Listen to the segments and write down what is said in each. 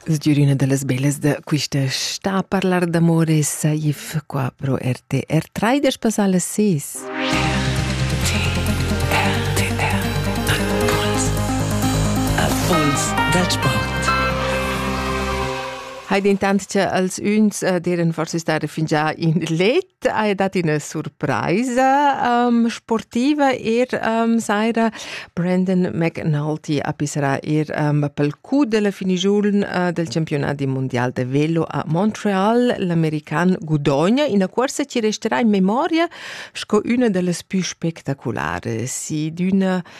Sgürina da las bellas da quista sta a parlar d'amor e saif qua pro RTR 3 da spassar las 6. Impuls da sport. Hai dentant che als uns eh, deren forse stare fingià in let hai dat ina surpraisa um, sportiva er um, saira Brandon McNulty apisserà er um, pel cu della finigiun uh, del campionati mondial de velo a Montreal. L'american gudogna in corsa ci resterà in memoria sco una delle più spettacolari, sì d'una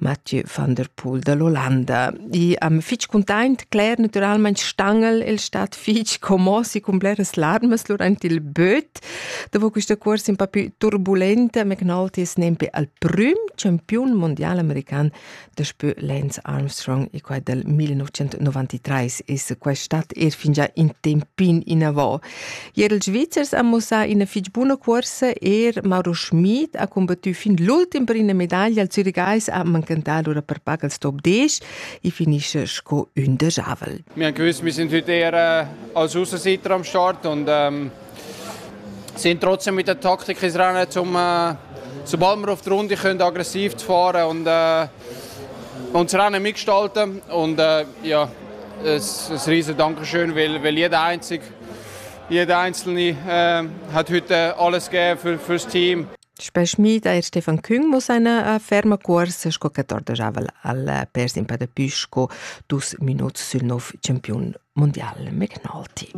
Mathieu van der Poel da l'Ollanda. I am fich cuntaint, Claire, naturalmaing stangel el stat fich commos e cun bleras larmas durant il böt. Dopo questa corsa un po' più turbulenta, me knaltis nempe al prüm campiun mondial american daspö Lance Armstrong e quai dal 1993. Es quai stat er fingià in tempin inavò. Ier ils Svizzers han mussà ina fitg buna cuorsa, er Mauro Schmid ha combattü fin l'ultim per ina medaglia al Zürigais, ha manchentà lura per pac al stop 10 e finisce sco ün de javel. Wir gewiss, wir sind heute eher äh, als Außenseiter am Start und ähm, sind trotzdem mit der Taktik ins Rennen, um, äh, sobald wir auf die Runde können, aggressiv zu fahren und, äh, und das Rennen mitgestalten. Und äh, ja, Es ein riesen Dankeschön, weil, weil jeder einzig, jeder Einzelne äh, hat heute alles gegeben für, fürs Team. Spesmi da Stefan Küng muss eine ferma corsa sco che tordejavel al persin per de Püsco dus minuts sül nov campiun mondial McNulty.